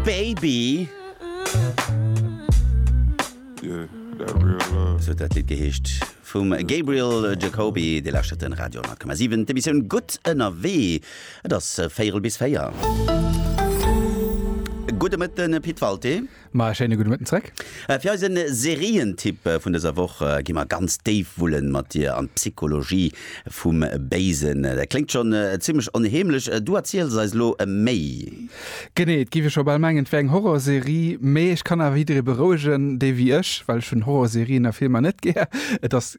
Baby esou huet dat Lidd geheescht vum Gabriel Jacoby. Dir lauschtert den Radio 10,7, d'Emissioun Gutt ënnerwee. Et ass véierel bis véier. Gudde Mëtten Pit Walté. Ma e schéine gudde Mëtten zréck. Fir eise Serientipp vun dëser Woch gi mer ganz déif wullen mat dir an d'Psychologie vum Béisen. Dat kléngt schonn zimlech onheemlech, du erziels eis elo méi. Genee, et géif ee scho bal mengen, et wär eng Horrorserie, mee ech kann awer jidderee berouegen, dee wéi ech, well ech hunn Horrorserien a filmer net gär, et ass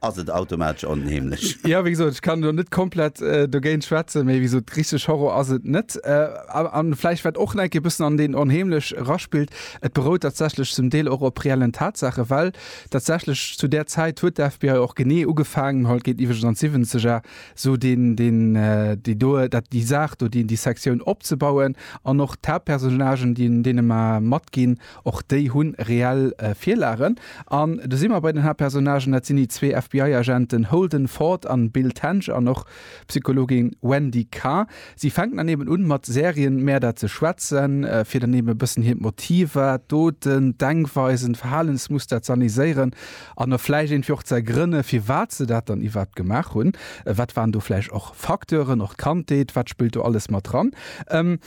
Ass et automatesch onheemlech? Jo, wéi gesot, ech kann elo net komplett dogéint schwätzen, mee wéi gesot, richteg Horror ass et net. A vläicht wat och enke bëssen an deen onheemlech eraspillt, et berout tatsächlech zum Deel och op reellen Tatsaache, well tatsächlech zu där Zäit huet d'FBI och genee ugefaangen, haut geet iwweregens an d'Siwwenzeger, esou deen, deen, déi do, dat, déi Saach do, déi Sektioun opzebauen an och d'Haaptpersonnagen, déi deene mar matginn. Och déi hu reell Virlagen. An do si mer bei den Haaptpersonnagen, dat sinn déi zwee FBI-Agenten Holden Ford an Bill Tench an och d'Psychologin Wendy Carr. Si fänken dann eben un, mat Serienmäerder ze schwätzen, fir dann eben e bëssen hiert Motiver, d'Doten, d'Denkweisen, d'Verhalensmuster z'anaiséieren an och vläicht iergendwéi och z'ergrënne firwat se dat dann iwwerhaapt gemaach hunn. Wat waren do vläicht och Facteuren? Och d'Kandheet, wat spillt do alles mat dran?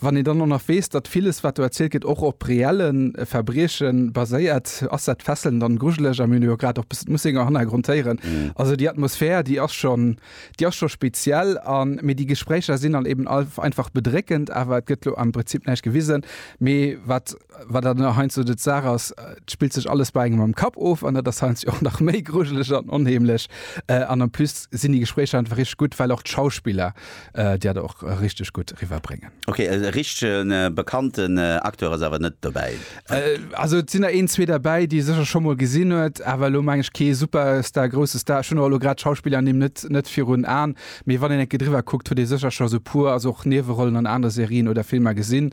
Wann een dann och nach weess, datt villes, wat do erzielt gëtt, och op reelle Verbrieche baséiert, ass dat fesselnd an grujeleg. A mir hunn jo grad och e bëssen d'Mussinger Hannergrond héieren. Also déi Atmosphär, déi ass schonn, déi ass scho speziell. A mee déi Gespréicher sinn dann eben einfach bedréckend. Awer et gëtt elo am Prinzip näischt gewisen. Mee wat. wat dat nach heinz de Saach ass, et spillt sech alles bei engem am Kapp of an dat ass heinz och nach méi grujeleg an onheemlech. An en plus sinn déi Gespréicher einfach richteg gutt, well och d'Schauspiller dat och richteg gutt riwwer bréngen. Ok, e richtegen bekannten Acteur ass awer net dobäi? Also et sinn der een, zwee derbäi, déi ee sécher scho mol gesinn huet, awer elo meng ech kee Superstar, grousse Star. Ech hunn och elo grad d'Schauspillernimm net, net virun Aen, mee wann een eng Kéier driwwer kuckt, huet ee sécher scho esou e puer, also och Niewerollen an anere Serien oder Filmer gesinn.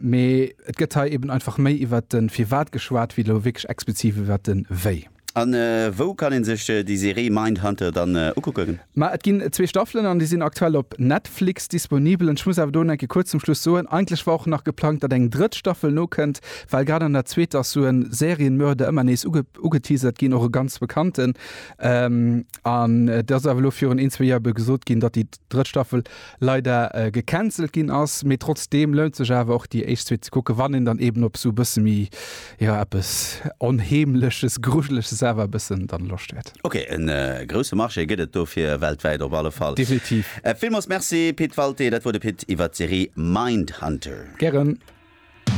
Mee et gëtt hei eben einfach méi iwwert de Firwat geschwat, wéi elo wierklech expliziv iwwert de Wéi. A wou kann ee sech déi Serie Mindhunter dann ukucken? Ma et ginn zwee Staffelen an déi sinn aktuell op Netflix disponibel. An ech muss awer do enke kuerz zum Schluss soen, eigentlech war och nach geplangt, datt eng drëtt Staffel nokënnt, well grad an der zweeter ass sou e Serienmörder ëmmer nees ugeteasert ginn, och e ganz bekannten. An et ass awer elo virun een, zwee Joer ebe gesot ginn, datt déi drëtt Staffel leider gecancelt ginn ass, mee trotzdeem lount sech awer och déi éischt Suite ze kucken, wann een dann eben op esou e bësse méi, jo eppes Onheemleches, Grujeleches awer e bëssen dann Loscht huet. Ok, e grousse Marché gëtt et dofir weltwäit op alle Fall. Definitiv. Villmools Merci Pit Walté, dat wor de Pit iwwert d'Serie Mindhunter. Gären.